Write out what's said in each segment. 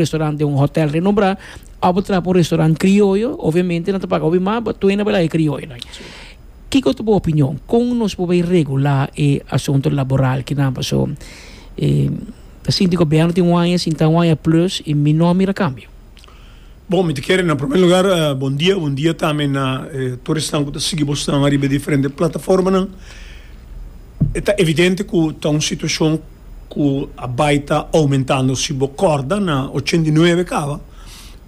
restaurant den un hotel renombrá ò bo traha pa un restaurant krioyo obviamente nan ta paga hopi mas bo tuena bo laga e krioyonan kiko ta bo opinion kon nos por bai regulá e asunto laboral kinan paso ta sinti gobierno tin un aña sinta un aña plus y mi no a mira kambio. Bon mi ta kere na primer lugar bondia bondia tambe na tur esnan ku ta sigui bo snan ariba e diferente plataformanan e ta evidente ku ta un situashon. ku a bai ta oumentando. Si bo kòrda na ochenta i nuebe kaba,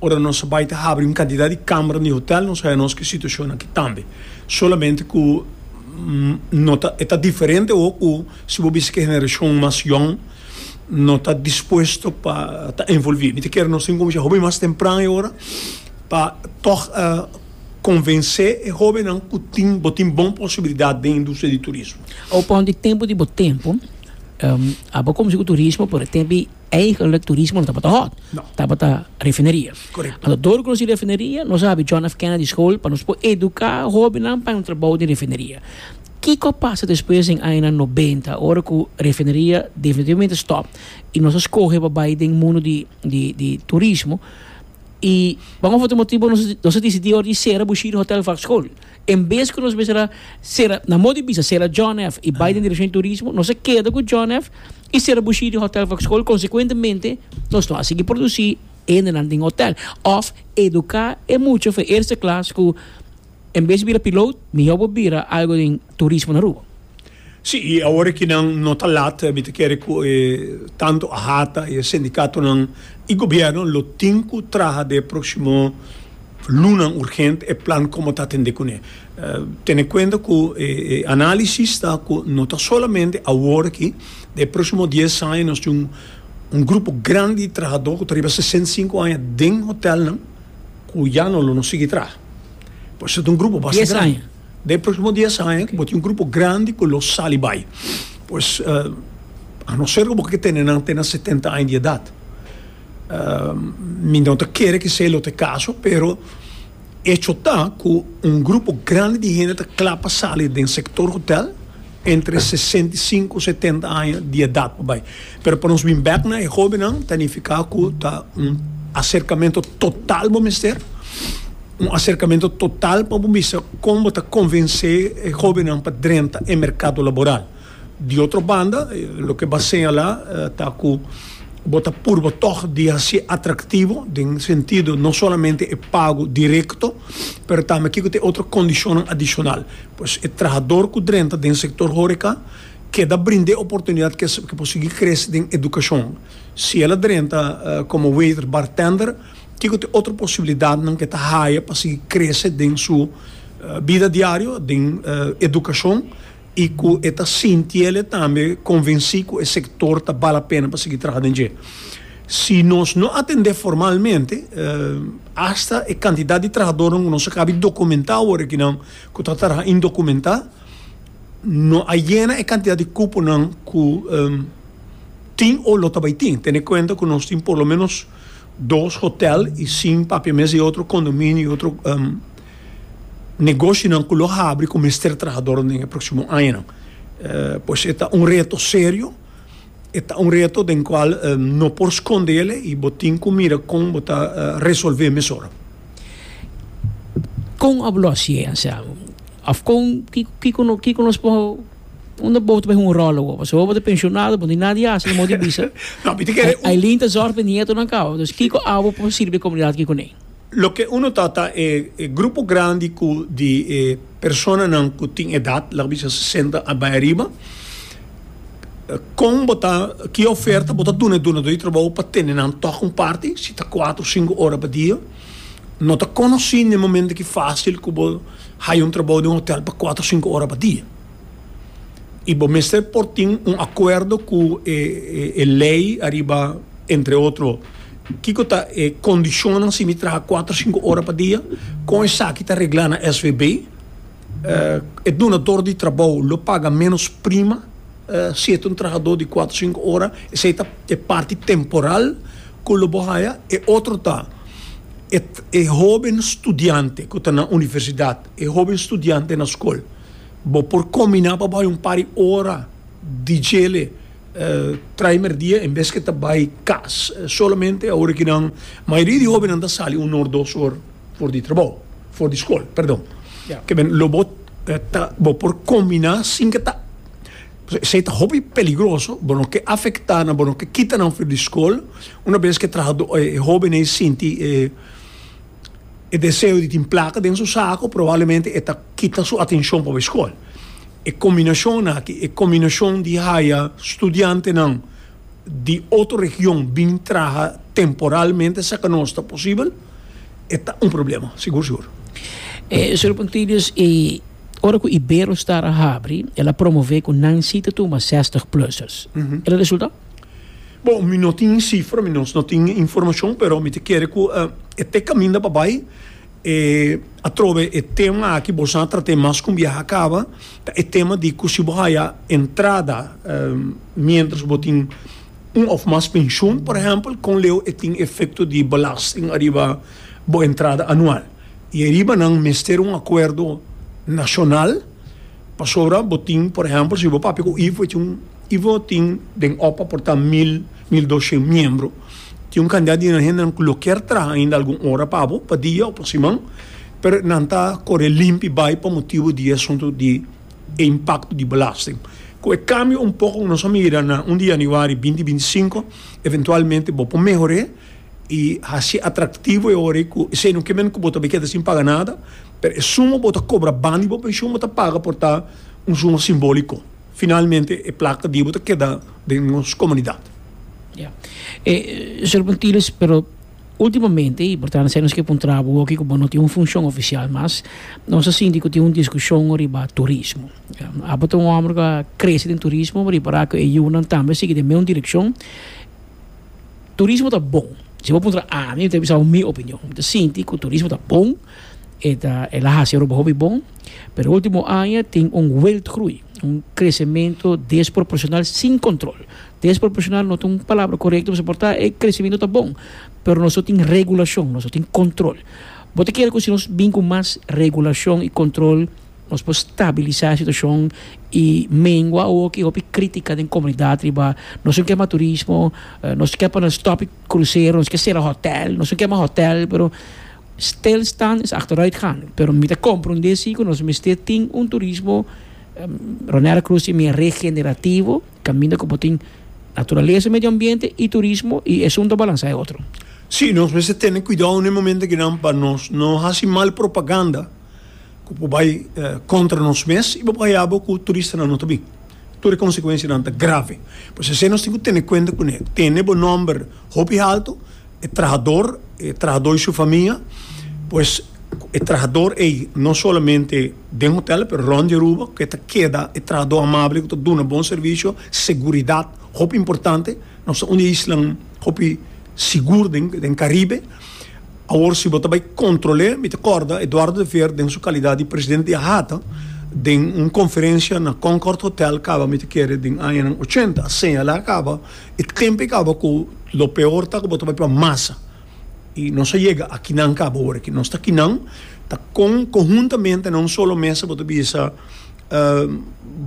ora nos a bai ta habri un kantidat di kambra di hotèl, nos a haña nos ku e situashon akí tambe. Solamente ku no ta e ta diferente awor ku si bo bisa ku e generashon mas yòn no ta dispuesto pa ta envolví. Mi ta kere nos tin ku kuminsha hopi mas tempran e ora pa tòg konvensé e hóbennan ku tin bo tin bon posibilidat den industria di turismo. Awor pon di tempu di bo tempu. Abo como si cu turismo, pero e tempi eigenlijk turismo no tabata hot, tabata refineria. Correcto. Anto dor cu nos tin refineria, nos a habri John F. Kennedy School pa nos por educa hobennan pa e trabou den refineria. Kico a pasa despues den añanan noventa ora cu refineria definitivamente stop y nos a scoge pa bay den mundo di di di turismo y pa un of otro motibo nos a nos a decidi ora di cera Bushiri Hotel Vac School. En bes ku nos bisa sera, na modi bisa sera John F. i bai den direkshon di turismo, nos a keda ku John F. i sera bushi di hotel Foxhole. Konsekuentemente nos no a sigui produsí hendenan den hotel òf eduká e mucha for eerste klas ku en bes di bira piloot mihó bo bira algu den turismo na Aruba. Sí, i awor aki nan no ta lat, mi ta kere ku e tantu AHATA, e sindikatonan i gobièrnu lo tin ku traha den e próksimo lunan urgent e plan komo ta atendé kuné. Tene kuenta ku e análisis ta ku no ta solamente awor aki, den e próksimo dies aña nos tin un grupo grandi di trahadó ku ta riba sesenta i sinku aña den hotèlnan ku ya no lo no sigui traha. Pues ta un grupo bastante grandi. Den próksimo dies aña bo tin un grupo grandi ku lo sali bai. Pues, a no ser ku bo ke tene nan te na setenta aña di edat. Mi no ta kere ku esei lo ta e kaso, pero echo ta ku un grupo grandi di hende ta kla pa sali den sektor hotèl. entre sesenta i sinku setenta aña di edat pa bai, pero pa nos bin bek na e hobennan ta nifiká ku ta un aserkamentu total bo mester, un aserkamentu total pa bo bisa kon bo ta konvensé e hobennan pa drenta e merkado laboral. Di otro banda, loke bo a señalá ta ku bo ta purba tòg di hasié atraktivo den sentido no solamente e pago direkto, pero tambe kiko ta e otro kondishonnan adishonal. Pues e trahador ku drenta den sektor horeka keda brinda e oportunidat ke ke por sigui krese den edukashon. Si el a drenta komo waiter, bartender, kiko ta e otro posibilidatnan ke ta haya pa sigui krese den su bida diario, den edukashon i ku e ta sinti ele tambe konvensí ku e sektor ta bala pena pa sigui traha den dje. Si nos no atendé formalmente, asta e kantidat di trahadornan ku nos a kabi dokumentá wòrdu aki nan, ku ta traha indokumentá no a yena e kantidat di kuponan ku tin o lo ta bai tin, tene kuenta ku nos tin por lo ménos dos hotèl i sin papia mes di otro kondominio i otro negoshinan ku lo habri ku mester trahador den e próksimo añanan. Pues e ta un reto serio, e ta un reto den kual no por skond'é i bo tin ku mira kon bo ta resolv'é mesora. Kon a bo lo hasié, Anselmo? Òf kon, kiko, kiko no, kiko nos por unda bo ta bay hunga ròl awor? Pasobra bo ta penshonado, bo no tin nada di hasi, amor di bisa. No, mi ta kere un. Ailin ta zòrg pa e nietonan kawa. Entonces, kiko abo por sirbi e komunidat ki kuné? Loke uno ta, ta e, e grupo grandi ku di e personanan ku tin edat, laga bisa sesenta a bay ariba, Kon bo ta ki oferta bo ta duna e dunador di trabou pa tene nan tok un parti si ta kuater sinku ora pa dia no ta konosi na e momento ki facil ku bo haya un trabou den un hotel pa kuater sinku ora pa dia i bo mester por tin un acuerdo ku e e ley ariba entre otro kiko ta e condicionnan si mi traha kuater sinku ora pa dia kon esaki ta regla na svb. E dunador di trabou lo paga ménos prima si e ta un trahadó di kuater sinku ora, esei ta e parti temporal ku lo bo haya. E otro ta e e hóben studiante ku ta na universidat, e hóben studiante na skol, bo por kombiná pa bo haya un par di ora di djele trai mèrdia en bes ku e ta bai kas solamente. Mayoria di hóbennan ta sali un òf dos or. For di trabou, for di skol, perdon. Ke men lo bo ta bo por kombiná sin ke ta esei ta hopi peligroso, bo no ke afektá nan, bo no ke kita nan for di skol, una bes ke trahadó e hoben ei sinti e e deseo di tin plaka den su sako probablemente e ta kita su atenshon pabe skol. E kombinashon aki, e kombinashon di haya studiantenan di otro region bin traha temporalmente saka nos ta posibel. e ta un problema, sigur sigur. Señor Pontilius, y ora cu Iberostar a habri, el a promove cu nan si ta tuma zestig plusers. El a resulta? Bon, mi no tin e cifra, mi nos no tin e informacion, pero mi ta kere cu e te caminda pa bay, e atrobe e tema aki boso a trate mas con biaha a caba, ta e tema di cu si bo haya entrada, mientras bo tin. Un òf mas penshun, por ehèmpel, kon leu e tin efekto di belasting ariba bo entrada anual. I e riba nan mester un akuerdo nashonal pasobra bo tin, por ehèmpel, si bo papia ku ivo e tin un, ivo tin den opa por ta mil, mil doshen miembro, tin un kandidat di nan hendenan ku lo kier traha ainda algun ora pa bo, pa dia o pa siman, pero nan ta kore limpi bai pa motibu di e asuntu di. e impakto di belasting. Ku e kambio un poko ku nos a mira na un di yanüari binti binti sinku, eventualmente bo por mehor'é i hasié atraktivo e ora ei ku esei no ke men ku bo ta bai keda sin paga nada, pero e suma ku bo ta kobra ban di bo penshun bo ta paga por ta un suma simbóliko. Finalmente e plaka di bo ta keda den nos komunidat. Ya. E, Señor Pontilius, pero. Ultimamente, y por ta haciendo esaki pa un traba hopi cu bo no tin un funcion oficial mas, nos a sinti cu tin un discusion riba turismo. Abo ta un homber cu a crece den turismo, bo a repara cu e yunan tambe a sigui den mesmo direccion. Turismo ta bon, si bo a puntra ami, mi ta bisa bo mi opinion. Mi ta sinti cu turismo ta bon, e ta, el a haci aruba hopi bon, pero ultimo aña tin un weltgroei, un crecemento desproporcional sin control. Dies profesional no ta un palabra korekto pasobra por ta e kresimiento ta bon pero nos lo tin regulashon nos lo tin kontrol bo ta kere ku si nos bin ku mas regulashon i kontrol nos por stabilisa situashon i mengua oki hopi kritika den komunidat riba nos no ke mas turismo nos ke pone stop krusero nos ke sera hòtèl nos no ke mas hòtèl pero stilstand is achternit gaan pero mi ta komprendé si ku nos mester tin un turismo Bonaire krus tin mia regenerativo. Caminda cu bo tin Naturaleza, Medio Ambiente y Turismo y esun ta balansá e otro. Sí, nos mester tene cuidao n'e momento akinan pa nos no haci mal propaganda cu por bay contra nos mes y bo por hayabo cu turistanan no ta bin. Tur e consecuencianan ta grave. Pues esey nos tin cu tene cuenta cu n'e. Tene bo nomber hopi halto. e trahador e trahador y su famia pues e trahador ey no solamente den hotel pero rond di Aruba cu e ta keda e trahador amabel cu ta duna bon servicio seguridad hopi importante nos ta un di e islan hopi sigur den Caribe awor si bo ta bay controle mi ta corda Eduardo de Veer den su calidad di presidente di AHATA den un conferencia na Concord hotel caba mi ta kere den añanan ochenta a señala caba E tempo a caba cu lo peor ta cu bo ta bai pa masa y nos a yega aki nan caba ora aki nos ta aki nan ta con conhuntamente na un solo mesa bo ta bisa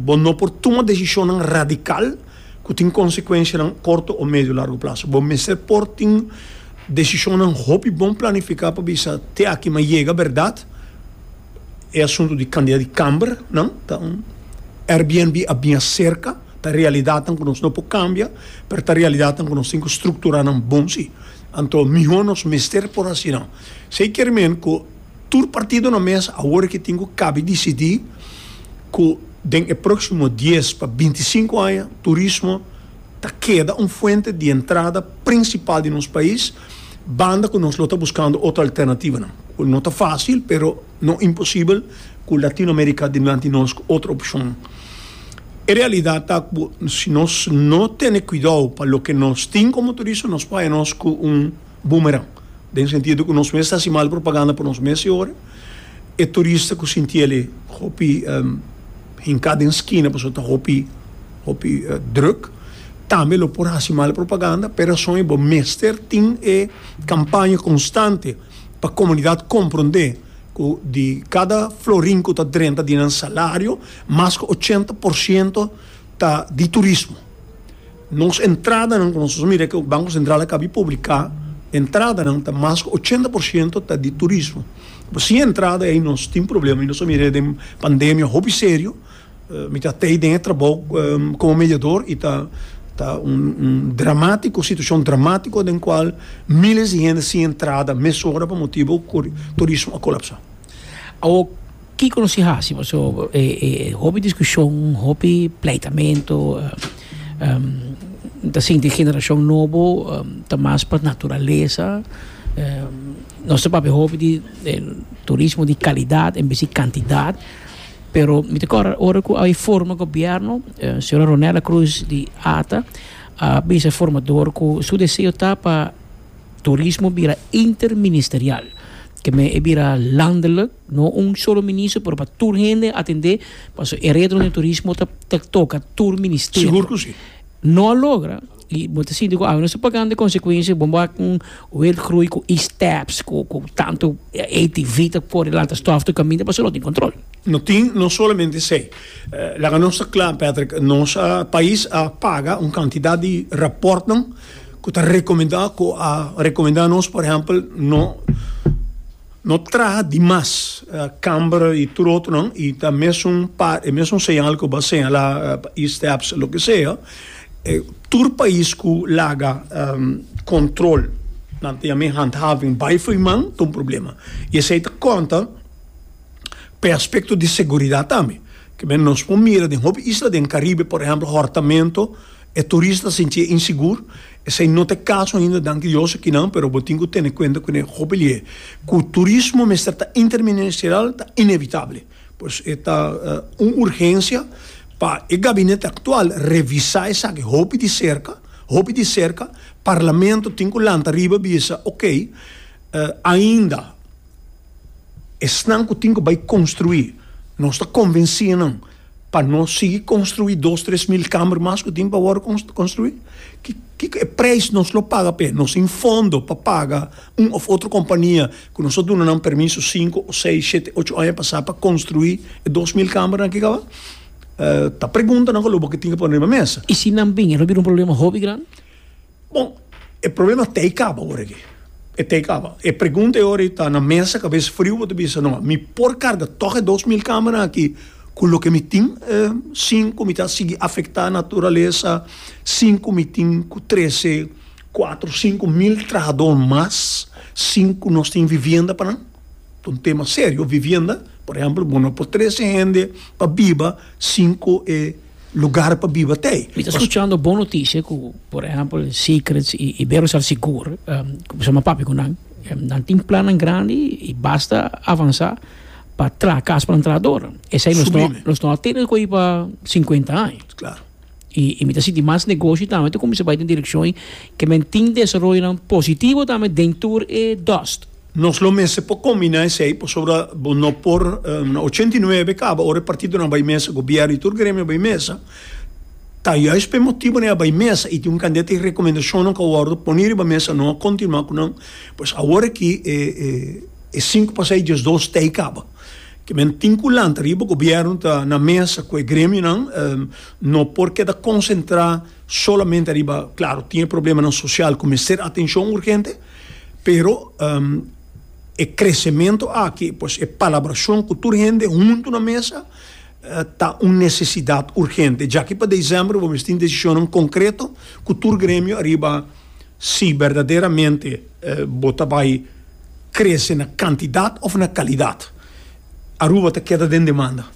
bo no por tuma decisionan radical cu tin consecuencianan corto o medio largo plazo bo mester por tin decisionan hopi bon planifica pa bisa te aki mi a yega berdad. E asuntu di kandida di kamber nan ta un Airbnb a bia serka ta realidatnan ku nos no por kambia pero ta realidatnan ku nos tin ku struktura nan bon si anto mihó nos mester por asina esei kier men ku tur partido na mes awor ke tin ku kabi disidí ku den e próksimo dies pa binti sinku aña turismo ta keda un fuente di entrada prinsipal di nos pais. banda cu nos lo ta buscando otro alternativanan, cu no ta facil pero no imposible cu Latinoamerica dilanti nos cu otro opcion. E realidad ta cu si nos no tene cuidao pa loke nos tin como turista nos paya nos cu un boomerang, den sentido cu nos mes ta haci mal propaganda pa nos mes y ora e turista cu sintiel e hopi. hinká den skina pasobra ta hopi hopi drùk. Tambe lo por hasi mal propaganda. P'e rason ei bo mester tin e kampaña konstante pa komunidat komprondé ku di kada florin ku ta drenta di nan salario, mas ku ochenta por siento ta di turismo. Nos entradanan ku nos a mira ku Banko Sentral a kabi publiká entradanan ta mas ku ochenta por siento ta di turismo. Pues sin entrada ei nos tin problema i nos a mira den pandemia hopi serio. Mi ta tei den e trabou komo mediador i ta ta un un dramátiko situashon dramátiko den kual míles di hende sin entrada mesora pa motibu ku turismo a kolapsá. Awor. Kiko nos tin hasi paso e hopi diskushon hopi pleitamento ta sinti generashon nobo ta mas pa naturalesa nos ta papia hopi di turismo di kalidat en bes di kantidat pero mi ta kor ora ku a forma gobièrnu señora Ronela Cruz di ata a bisa formador ku su deseo ta pa turismo bira interministerial ke men e bira landeluk. No un solo minister pero pa tur hende atende paso e retro den turismo ta ta toca tur ministerio. Sigur cu si. No a logra y bo ta sinti cu awe nos ta pagando e consecuencia bo a cu un wet groei cu e steps cu cu tanto ATV ta core lanta stof tur caminda paso no tin control. No tin no solamente esey laga nos ta cla Patrick nos a pais a paga un cantidad di raportnan cu ta recomenda cu a recomenda nos por ehempel no No traha di mas, camber y tur otronan y ta mesun par e mesun señal cu bo a señala pa e steps loke sea. Tur pais cu laga control nan ta yama e handhaving bay fo'i man ta un problema y esey ta conta p'e aspecto di seguridad tambe. Ke men nos por mira den hopi isla den Caribe por ehemplo hortamento e turista sinti e insegur. Esei no ta e kaso ainda, danki Dios, akinan, pero bo tin ku tene kuenta ku ne hopelié ku turismo mester ta interministerial ta inevitabele. Por eso e ta un urgensia pa e gabinete aktual revisá esaki hopi di serka, hopi di serka, parlamento tin ku lanta riba bisa, okey, ainda esnan ku tin ku bai konstruí nos ta konvensí nan Pa no sigui construi dos tres mil kamer mas cu tin pa wor construi? Kico e prijs nos lo paga p'e? Nos tin fondo pa paga un of otro compania cu nos a duna nan permiso cinco, seis, shete, ocho aña pasa pa construi e dos mil kamernan ki caba? Ta preguntanan cu aloba cu tin que pone riba mesa. Y si nan bin e no bira un problema hopi grandi? Bon, e problema t'ei kaba ora aki. E t'ei kaba. E pregunta e ora ei ta na mesa, kabes friu bo ta bisa, no, mi por karga tòg e dos mil kamanan aki ku loke mi tin sin ku mi ta sigui afektá naturalesa, sin ku mi tin ku trese kuatro, sinku mil trahadó mas sin ku nos tin vivienda pa nan? Ta un tema serio vivienda. Por ehèmpel, bo no por trese hende pa biba sin ku e lugar pa biba t'ei. Mi ta scuchando bon noticia cu por ehempel Secrets y Iberostar sigur cuminsa m'a papia cu nan. Nan tin plannan grandi y basta avansa pa traha cas pa nan traha door. Esey nos no nos no a tene cu ei pa cincuenta aña. Claro. Y y mi ta sinti mas negoshi tambe ta cuminsa bay den direccion y ke men tin desaroyonan positivo tambe den tur e dust. Nos lo mester por combina esey pasobra bo no por na ochenta i nuebe caba ora e partidonan bay mesa gobierno y tur gremio bay mesa ta juist pa e motibonan e a bay mesa y tin un cantidad di recomendacionnan cu a wordo poni riba mesa no a continua cu nan pues awor aki e cinco pa seis diesdos ta y caba ke men tin cu lanta riba gobierno ta na mesa cu e gremionan no por keda concentra solamente ariba claro tin e problemanan social cu mester atencion urgente. Pero e kresementu aki, pues e palabracion cu tur hende huntu na mesa ta un necesidad urgente. Djaki pa december bo mester tin decisionan concreto cu tur gremio ariba si berdaderamente bo ta bay crece na cantidad of na calidad. Aruba ta keda den demanda.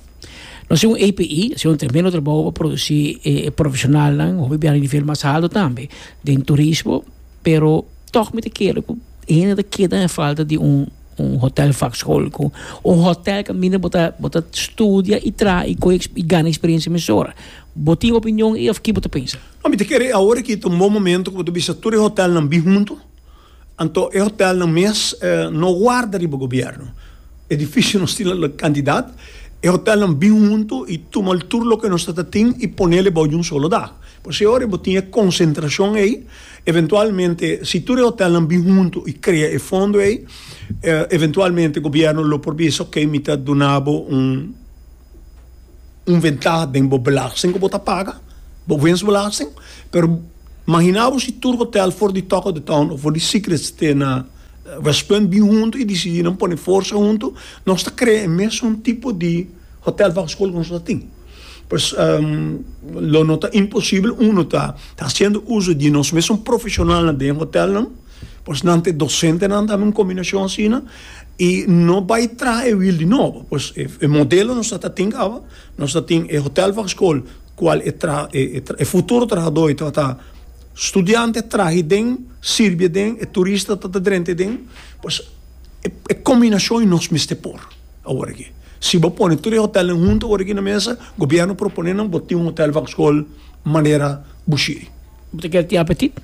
No haci un APE, haci un tremendo trabao pa produci e profesionalnan, hopi biaha na nivel mas alto tambe den turismo. Pero tog mi ta kere cu e hende ta keda na falta di un un hotel vakschool cu un hotel ca minder bo ta bo ta studia y traha y coge y gana experiencia mesora. Bo tin opinion ey of ki bo ta pensa? No, mi ta kere awor aki ta un bon momento cu bo ta bisa tur e hotelnan bin hunto, anto e hotelnan mes no warda riba gobierno, edificio nos tin la cantidad, e hotelnan bin hunto y tumal tur loke nos ta ta tin y ponel e bao di un solo dag. Por esi awor bo tin e concentracion ey. Eventualmente, si tur e hotelnan bin huntu i krea e fondo ei, eventualmente gobièrnu lo por bisa, Oké, mi ta duna bo un un ventaha den bo belasting ku bo ta paga, bo wensbelasting, pero mahina bo si tur hotel for di Talk of the Town o for di Secret Ste na West Punt bin huntu i disidí nan pone forsa huntu, nos ta krea e mesun tipo di. Hotel bajo school ku nos ta tin. Pues lo no ta imposible uno ta haciendo uso di nos mesun profesionalnan den hotelnan, pues nan ta e docentenan tambe un combinacion asina y no bay traha e wiel di nobo. Pues e modelo nos ta tin awa, nos ta tin e hotel bajo school cual e tra e futuro trahador tabata studiante trahi den, sirbi aden, e turista ta drenta aden, pues e combinacion nos mester por. Awor aki, si bo pone tur e hotelnan huntu awor aki na mesa, gobièrnu propone nan bo tin un hotel van skol manera Bushiri. Bo ta kere tin apetit?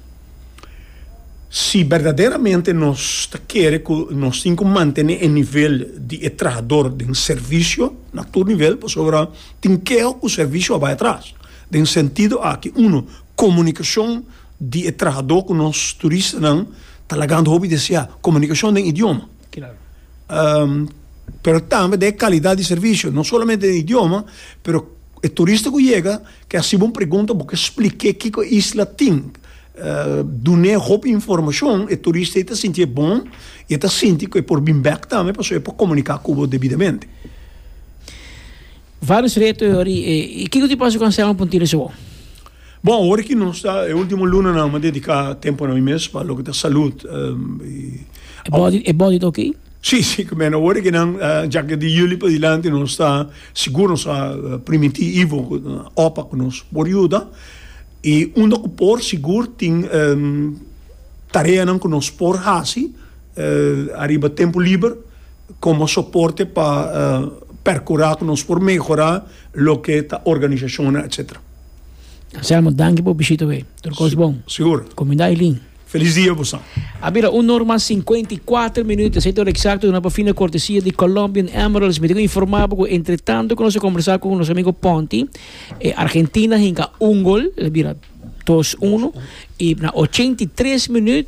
Si berdaderamente nos ta kere ku nos tin ku mantene e nivel di e trahador den servisio na tur nivel, pasobra tin keo ku servisio a bai atras. Den sentido aki, uno, komunikashon di e trahadó ku nos turistanan ta lagando hopi deseá, komunikashon den idioma. pero tambe den e kalidad di servisio, no solamente den e idioma, pero e turista ku yega ke hasiba un pregunta bo ke spliké kiko e isla tin, dun'é hopi informashon, e turista ei ta sintié bon i e ta sinti ku e por bin bèk tambe pasobra e por komuniká ku bo debidamente. Vários reto e ora i kiko tipo di konsèho bo pudi tira suwou? Bon, awor ki nos ta e ultimo lunanan lo mi a dedica tempo na mi mes pa loke ta salud. E body ta ok? Si, si, cu mene awor ki nan dja ke di juli padilanti nos ta sigur nos a primiti Ivo cu ta na opa cu nos por yuda y unda cu por sigur tin tareanan cu nos por haci ariba tempo liber como soporte pa percura cu nos por mehora loke ta organisacionnan etcetera. Anselmo, danki por bishita wey. Tur kos bon. Sigur. Kominda Eileen. Felis dia bo sa. A bira un orma sinkuenta i kuater minut, esei ta ora eksakto duna pa fin na kortesia di Colombian Emeralds. Mi tin ku informá bo ku entretanto ku nos a kombersá ku nos amigo Ponti, e Argentina a hinka un gol, el a bira dos unu, i na ochenta i tres minut,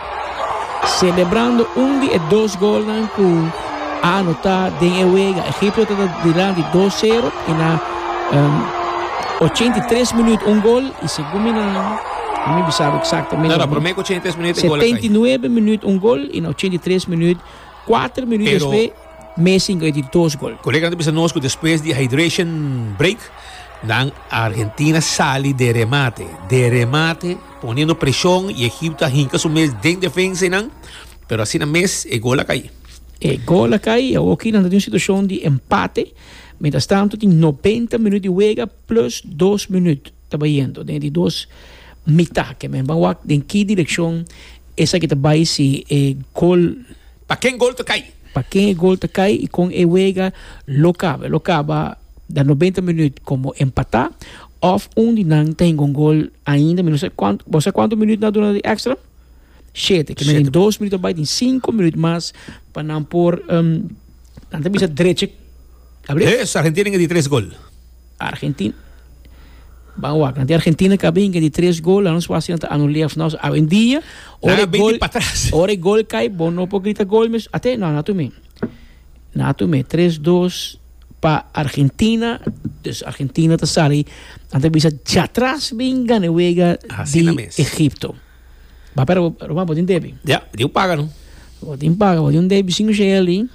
Selebrando un di e dos golnan ku a anotá den e wega. Egipto ta ta dilanti dos sero i na ochenta i tres minüt un gol i segun mi nan, no mi bisa eksaktamente. No, no, promé ku ochenta i tres minüt e gol a kai. Setenta i nuebe minüt un gol i na ochenta i tres minüt, kuater minüt despues, Messi ngoi di dos gol. Kolega nan ta bisa nos ku despues di hydration break nan Argentina sali den remate, den remate. Poniendo presion y Egipto a hinca su mes den defensa y nan, pero asina mes e gol a cay. E gol a cay y awoki nan ta tin un situacion di empate, mientras tanto tin noventa minuut di wega plus dos minuut ta bayendo den e di dos mitad, ke men ban wak den ki direccion esaki ta bay si e gol. Pa ken gol ta kai? Pa ken e gol ta kai i kon e wega lo kaba? Lo kaba na nobenta minüt komo empatá òf un di nan ta hinga un gol ainda. Mi no sa kuantu, bo sa kuantu minüt nan a duna di èkstra? Shete. Ke na den dos minüt a bai tin sinku minüt mas pa nan por, nan ta bisa drechi. Abrí? Hee, Sargentini hinga di tres gol. Argentina. Ban wakan. Di Argentina ka bin di tres gol, la nos por hasi nan ta anulé of nos. Awendia, Nan ora a e bini gol, pa tras. ora e gol kai, bo no por grita gol mes. Ate, no, na tumé. Na tumé. Tres, dos pa Argentina. Dus Argentina ta sali, nan ta bisa djatras bin gana e wega di Asina mes. Egipto. Papia Ro- Roman, bo tin debi? Ya, di un paga, no? Bo tin paga, bo di un debi sin Micheeli.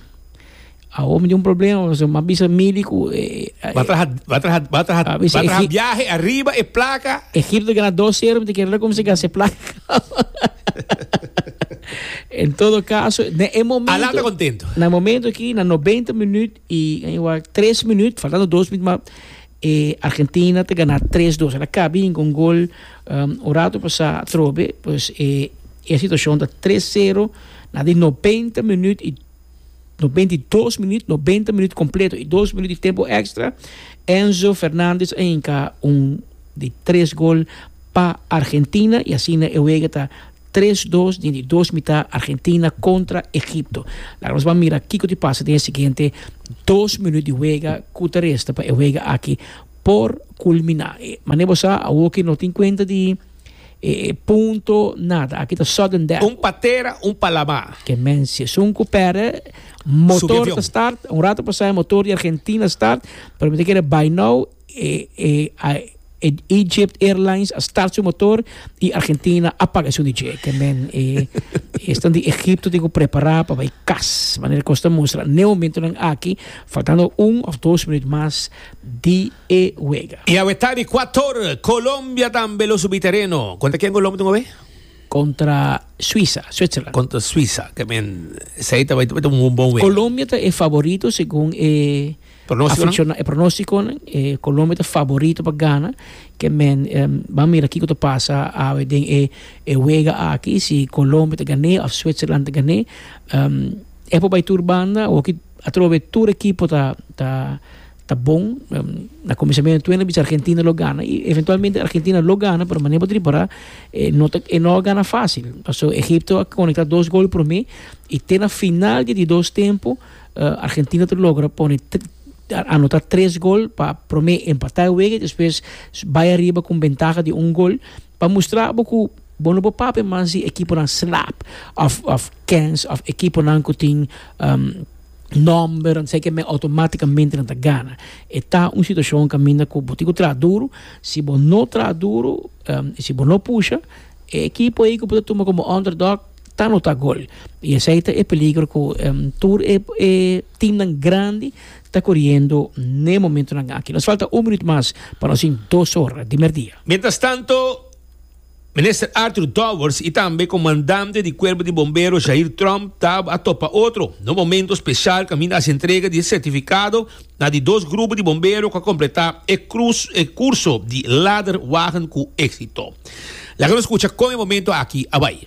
Awor mi tin un problema, mi a bisa Mili ku e. Bo a traha, bo a traha, bo a traha, bo a traha biahe ariba e plaka. Egipto gana dos sero, mi ta kere kumsa gasta e plaka. En todo kaso, na e momento. Alan ta kontento. Na e momento aki, na nobenta minuut i tres minuut, faltando dos minuut mas, e Argentina ta gana tres dos. El a kabi hinka un gol un rato pasá atrobe. Pues e situashon ta tres sero na di nobenta minuut i. No benti dos minüt, nobenta minüt kompleto i dos minüt di tempu èkstra, Enzo Fernandez a hinka un di tres gol pa Argentina i asina e wega ta tres dos den di dos mitá, Argentina kontra Egipto. Laga nos ban mira kiko ta pasa den e siguiente dos minüt di wega ku ta resta pa e wega aki por kulminá. Mane bo sa, awor ke no tin kuenta di. E punto nada, aki ta sudden death. Un pa tera, un pa lama. Ke men si esun ku perde motor ta start, un rato pasá e motor di Argentina start, pero mi ta kere bai nou, e e Egypt Airlines a start su motor i Argentina a paga esun di dje. Ke men e esnan di Egipto tin ku prepará pa bai kas, manera kos ta mustra. Ne momentonan aki, faltando un òf dos minüt mas di. e wega. I awe ta di Kuator. Colombia tambe lo subi tereno. Kontra ken Colom tin awe? Kontra Suisa, Switzerland. Kontra Suisa, ke men esei ta bai ta un bon wega. Colombia ta e faborito segun e aficionado, e pronosticonan. Colombia ta faborito pa gana, ke men ban mira kiko ta pasa awe den e wega aki, si Colombia ta gané of Switzerland ta gané. E por bai tur banda, awoki atrobe tur ekipo ta. ta bon na cominsamentu tuena bicha Argentina lo gana y eventualmente Argentina lo gana pero manera botri para eh, no ta, eh, no gana fácil paso Egipto a conecta dos gol por mí y te na final de dos tempo uh, Argentina te logra pone anota tres gol pa prome empata e wege después bai arriba con ventaja de un gol pa mostra boku bono bo pape man si equipo nan slap of of kens of equipo nan kutin um, nòmber, nan seke mei automátikamente nan ta gana. E ta un situashon kaminda ku bo tin ku traha duru, si bo no traha duru i si bo no pusha, e ekipo ei ku bo ta tuma komo underdog ta anota gol. I esei ta e peligro ku tur e e timnan grandi ta koriendo n'e momentunan aki. Nos falta un minuut mas pa nos tin dos ora di mèrdia. Mientrastanto. Minister Arthur Dowers y tambe Comandante di Cuerpo di Bombero Jair Tromp ta a topa otro na un momento special caminda haci entrega di e certificado na di dos grupo di bombero cu a completa e e curso di Ladderwagen cu exito. Laga nos cucha con e momento aki a bay.